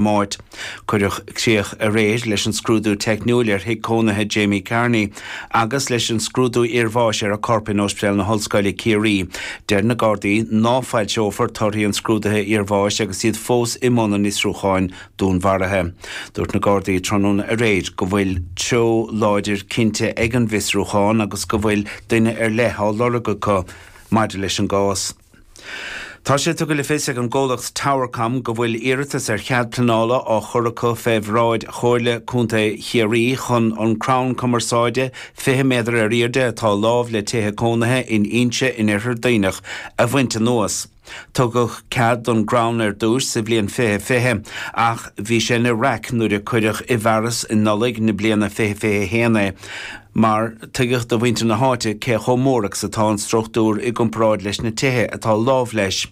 Máirt. Cuireadh críoch aréir leis an scrúdú teicniúil ar thigh cónaithe Jamie Carney agus leis an scrúdú iarbháis ar a corp in Ospidéal na hOllscoile, Ciarraí. Deir na Gardaí ná foilseofar torthaí an scrúdaithe iarbháis agus iad fós i mbun an fhiosrúcháin dúnmharaithe. Dúirt na Gardaí tráthnóna aréir go bhfuil treo láidir cinnte ag an bhfiosrúchán agus go bhfuil duine ar leith á lorg acu maidir leis an gcás. Tá sé tugtha le fios ag an gcomhlacht Towercom go bhfuil iarratas ar chead pleanála á chur acu fé bhráid Chomhairle Contae Chiarraí chun an crann cumarsáide 20 méadar in aoirde atá lámh le tithe cónaithe in Inse in Iarthar Duibhneach a bhaint anuas. Tugadh cead don gcrann ar dtúis sa bhliain 2020 ach bhí sé ina raic nuair a cuireadh i bhfearas um Nollaig na bliana 2021 é. nuair a tuigeadh do mhuintir na háite cé chomh mór agus atá an struchtúr i gcomparáid leis na tithe atá lámh leis.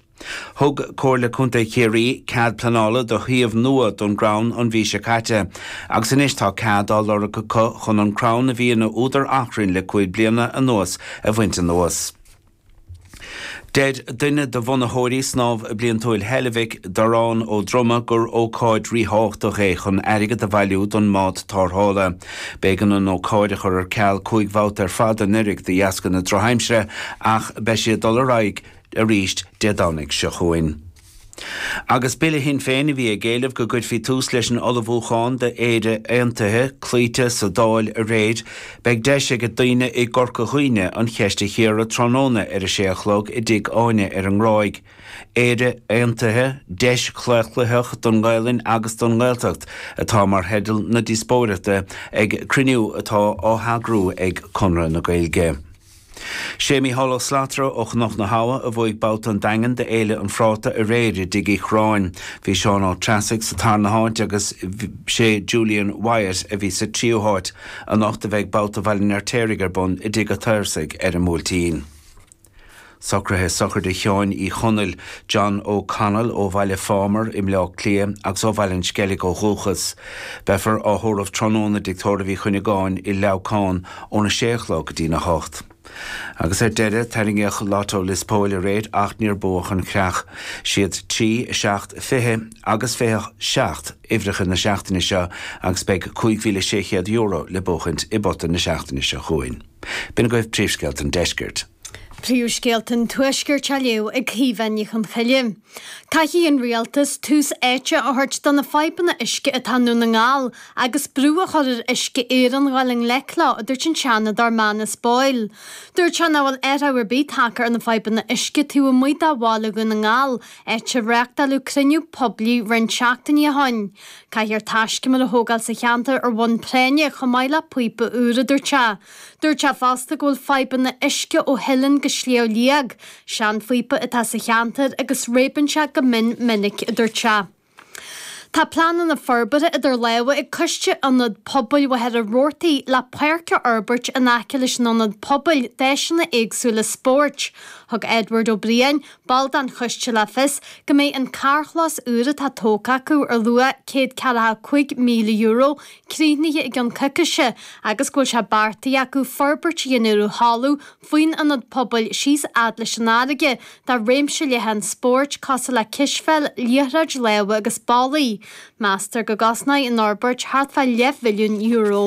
Thug Comhairle Contae Chiarraí cead pleanála do shuíomh nua don gcrann an mhí seo caite, agus anois tá cead á lorg acu chun an crann a bhí ina údar achrainn le cúig bliana anuas a bhaint anuas. Deir duine de bhunaitheoirí Snámh Bliantúil Heilbhic, Dorán Ó Droma gur ócáid ríthábhachtach é chun airgead a bhailiú don mbád tarrthála. B'éigean an ócáid a chur ar ceal cúig bhabhta ar fad anuraidh de dheasca na drochaimsire ach beidh sé ag dul ar aghaidh arís Dé Domhnaigh seo chugainn. Agus Bille Shinn Féin, a bhí ag éileamh go gcuirfí tús leis an ullmhúchán d'Éire Aontaithe, cloíte sa Dáil aréir, beidh deis ag daoine i gCorca Dhuibhne an cheist a chíoradh tráthnóna ar a sé a chlog i dTigh Áine ar an nGráig. Éire Aontaithe, Deis Chlaochlaitheach don nGaelainn agus don nGaeltacht atá mar theideal na díospóireachta ag cruinniú atá á heagrú ag Conradh na Gaeilge. Sé Micheál Ó Slatara ó Chnoc na hAbha a bhuaigh babhta an Daingin do Fhéile an Phráta aréir i dTigh Uí Chráin. Bhí Seán Ó Treasaigh sa tarna háit agus sé Julian Wyatt a bhí sa tríú háit. Anocht a bheidh babhta Bhaile an Fheirtéaraigh ar bun i dTigh a'tSaorsaigh ar an mBuailtín. Socruithe sochraide Sheáin Uí Chonaill, John O Connell ó Bhaile Phámar i mBleá Cliath agus ó Bhaile an Sceilg ó dhúchas. Beifear á thórramh tráthnóna i dTigh Tórraimh Uí Chuinneagáin i Leamhcán. óna sé a chlog go dtí'n a hocht. Agus ar deireadh, tarraingíodh Lotto Lios Póil aréir ach níor buadh an chreach. Siad trí, seacht, fiche agus fiche seacht uimhreacha na seachtaine seo agus beidh €5,600 le buachaint i bpota na seachtaine seo chugainn. B'in agaibh Príomhscéalta an Deiscirt. Príomhscéalta an Tuaiscirt á léamh ag Caoimhe Ní Chonghaile. Caithfidh an Rialtas tús áite a thabhairt do na fadhbanna uisce atá i nDún na nGall agus brú a chur ar Uisce Éireann dul i ngleic leo, a dúirt an Seanadóir Manus Boyle. Dúirt sé nach bhfuil athrach ar bith tagtha ar na fadhbanna uisce taobh amuigh de Bhaile Dhún na nGall, áit ar reáchtáladh cruinniú poiblí roinnt seachtainí ó shin. Caithfear taiscumar a thógáil sa cheantar ar bhonn práinne chomh maith le píopa úr, a dúirt sé. Dúirt sé fosta go bhfuil fadhbanna uisce ó Theileann go Sliabh Liag, seanphíopa atá sa cheantar agus réabann sé go mion minic, a dúirt sé. Tá pleananna forbartha idir lámha ag Coiste Ionad Pobail Mhachaire Rabhartaigh le páirc a fhorbairt in aice leis an ionad pobail d'áiseanna éagsúla spóirt. Thug Edward Ó Briain, ball den choiste le fios go mbeidh an carrchlós úr atá tógtha acu ar luach €145,000 críochnaithe i gceann coicíse agus go bhfuil sé beartaithe acu forbairt a dhéanamh ar thalamh faoin Ionad Pobail síos fhad leis an fharraige do réimse leathan spóirt cosúil le cispheil, liathróid láimhe agus bollaí. Meastar go gcosnóidh an fhorbairt thart fá leathmhilliún euro.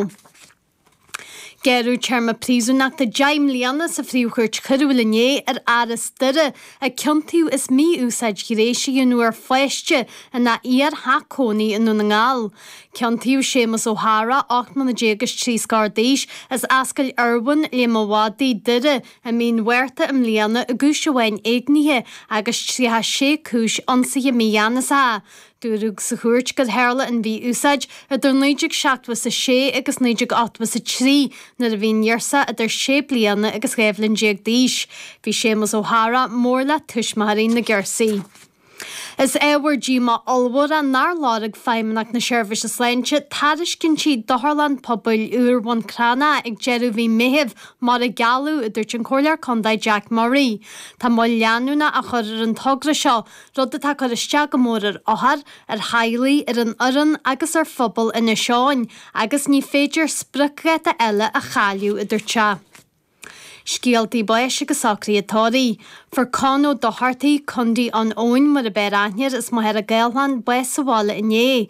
Gearradh téarma príosúnachta 10 mbliana sa Phríomhchúirt Choiriúil inné ar fhear as Doire a ciontaíodh as mí-úsáid ghnéis a dhéanamh ar pháiste ina iar-theach cónaí i nDún na nGall. Ciontaíodh Séamus Ó hEára, 18 mbliana is trí scor d'aois, as Ascaill Irwin, Léim a' Mhadaidh, Doire, i mí an Mhárta i mbliana i gcúis amháin éignithe agus 36 cúis ionsaithe mígheanasacha. Dúradh sa chúirt gur tharla an mhí-úsáid idir 1976 agus 1983 nuair a bhí an ghirseach idir sé bliana agus dhá bhliain déag d'aois. Bhí Séamus Ó hEadhra mór le tuismitheoirí na girsí. Is ábhar díomá ollmhór é nár lorg Feidhmeannacht na Seirbhíse Sláinte tairiscintí d'otharlann pobail úr Bhun Cranncha ag deireadh mhí Meithimh mar a gealladh, a dúirt an Comhairleoir Contae Jack Murray. Tá moill leanúna á chur ar an togra seo rud atá ag cur isteach go mór ar othair, ar theaghlaigh, ar an fhoireann agus ar phobal Inis Eoghain agus ní féidir spriocdháta eile a chailleadh, a dúirt sé. Scéaltaí báis agus socruithe tórraimh. Fuair Con Ó Dochartaigh, Condaí Eoin, mar ab fhearr aithne air, as Machaire Gathlán, bás sa bhaile inné.